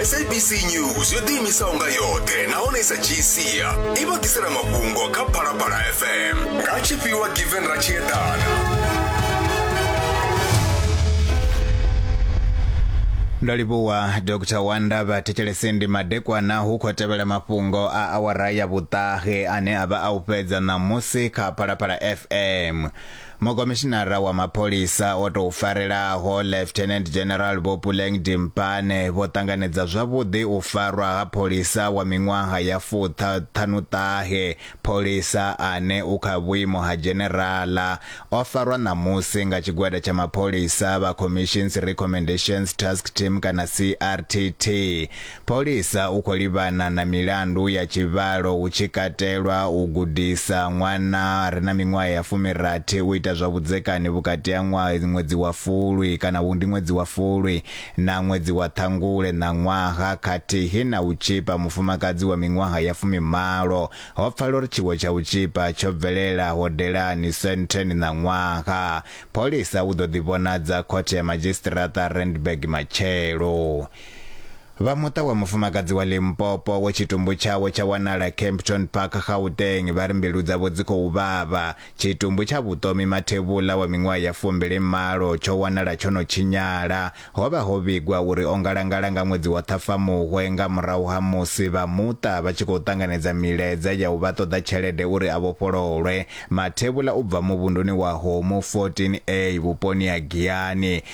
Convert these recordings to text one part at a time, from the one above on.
sabc news yo ḓiimisaho nga yoṱhe nahone i sa dzhii sia i vha ḓisela mafhungo kha phalaphala fm nga tshifhiwa given ra tshi eḓana ndo livhuwa dr wanda vhathetshelesindi madekwana hu khou tevhela mafhungo a awara ya vhuṱahe ane a vha a u fhedza ṋamusi kha phalaphala fm Mukomishinara wa mapholisa o tou farelaho Lieutenant General Vho Puleng Dimpane vho ṱanganedza zwavhuḓi u farwa ha pholisa wa miṅwaha ya fuṱha ṱhanuṱahe, pholisa ane u kha vhuimo ha Dzheneraḽa. O farwa ṋamusi nga tshigwada tsha mapholisa vha Commissions Recommendations Task Team kana CRTT. Pholisa u khou livhana na milandu ya tshivhalo hu tshi katelwa u gudisa ṅwana a re na miṅwaha ya fumirathi u ita zwa vhudzekani vhukati ha ṅwedzi wa Fulwi kana vhu ndi ṅwedzi wa Fulwi na ṅwedzi wa Ṱhangule ṋaṅwaha khathihi na u tzhipa mufumakadzi wa miṅwaha ya fumimalo. Ho pfala uri tshiwo tsha u tzhipa tsho bvelela hodelani Sandton ṋaṅwaha. Pholisa u ḓo ḓivhonadza Khothe ya Madzhisiṱiraṱa Randburg matshelo. Vha muṱa wa mufumakadzi wa Limpopo we tshitumbu tshawe tsha wanala Kempton Park, Gauteng, vha ri mbilu dzavho dzi khou vhavha. Tshitumbu tsha Vhuṱomi Mathevhula wa miṅwaha ya fumbili malo tsho wanala tsho no tshinyala. Ho vha ho vhigwa uri o ngalangala nga ṅwedzi wa Ṱhafamuhwe nga murahu ha musi vha muṱa vha tshi khou ṱanganedza milaedza ya u vha ṱoḓa tshelede uri a vhofhololwe. Mathevhula u bva muvhunduni wa Homu 14A vhuponi ha Giyani,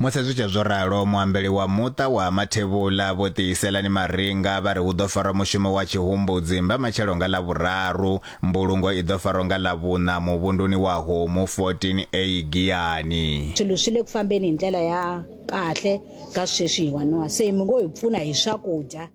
Musi zwi tshee zwo ralo, muambeli wa muṱa wa Ha Mathevhula Vho Tiiselani Maringa vha ri hu ḓo farwa mushumo wa tshihumbudzi mbamatshelo nga Ḽavhuraru, mbulungo i ḓo farwa nga Ḽavhuṋa muvhunduni wa Homu 14A Giyani. Swilo swi le ku fambeni hi ndlela ya kahle ka sweswi hi waniwa se mi ngo hi pfuna hi swakudya.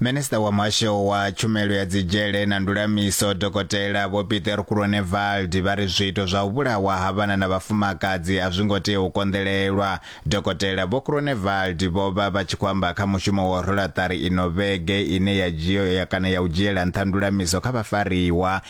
minista wa muhasho wa tshumelo ya dzidzhele na ndulamiso dokotela vho peter kuronevald vha ri zwiito zwa u vhulawa ha vhana na vhafumakadzi a zwi ngo tea u konḓelelwa dokotela vho kuronevald vho vha vha tshi khou amba kha mushumo wa rolaṱari ino vhege ine ya dzhio ya kana ya u dzhiela nṱha ndulamiso kha vhafariwa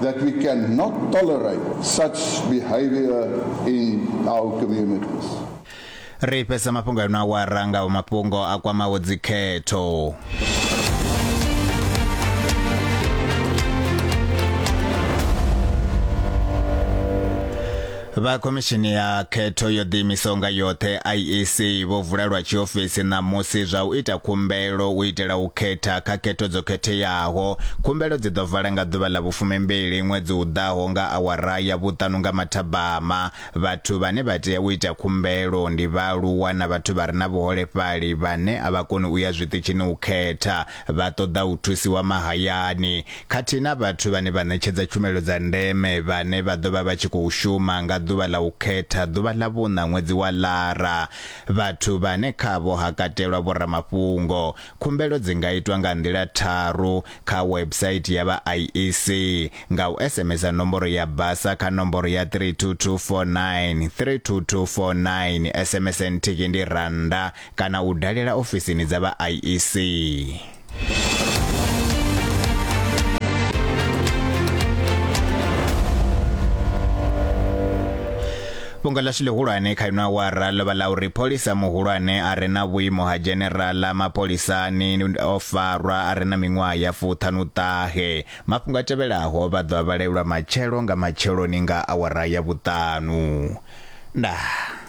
that we cannot tolerate such behavior in our communities. Ri fhesa mafhungo ano awara nga mafhungo a kwamaho dzikhetho. Vha khomishini ya khetho yo ḓiimisaho nga yoṱhe IEC vho vula lwa tshiofisi ṋamusi zwa u ita khumbelo u itela u khetha kha khetho dzo khetheaho. Khumbelo dzi ḓo vala nga ḓuvha ḽa vhufumimbili ṅwedzi u ḓaho nga awara ya vhuṱanu nga mathabama. Vhathu vhane vha tea u ita khumbelo ndi vhaaluwa na vhathu vha re na vhuholefhali vhane a vha koni u ya zwiṱitshini u khetha. vha ṱoḓa u thusiwa mahayani khathihi na vhathu vhane vha ṋetshedza tshumelo dza ndeme vhane vha ḓo vha vha tshi khou shuma nga ḓuvha ḽa u khetha ḓuvha ḽa vhuṋa ṅwedzi wa Lara, vhathu vhane khavho ha katelwa vhoramafhungo. Khumbelo dzi nga itwa nga nḓila tharu kha website ya vha IEC, nga u SMS-a nomboro ya basa kha nomboro ya 32249, 32249, SMS nthihi ndi rannda kana u dalela ofisini dza vha IEC. fhungo ḽashu ḽihulwane kha ino awara ḽo vha ḽa uri pholisa muhulwane a re na vhuimo ha dzheneraḽa mapholisani o farwa a re na miṅwaha ya fuṱhanuṱahe mafhungo a tevhelaho vha ḓo a vhalelwa matshelo nga matsheloni nga awara ya vhuṱanu ndaa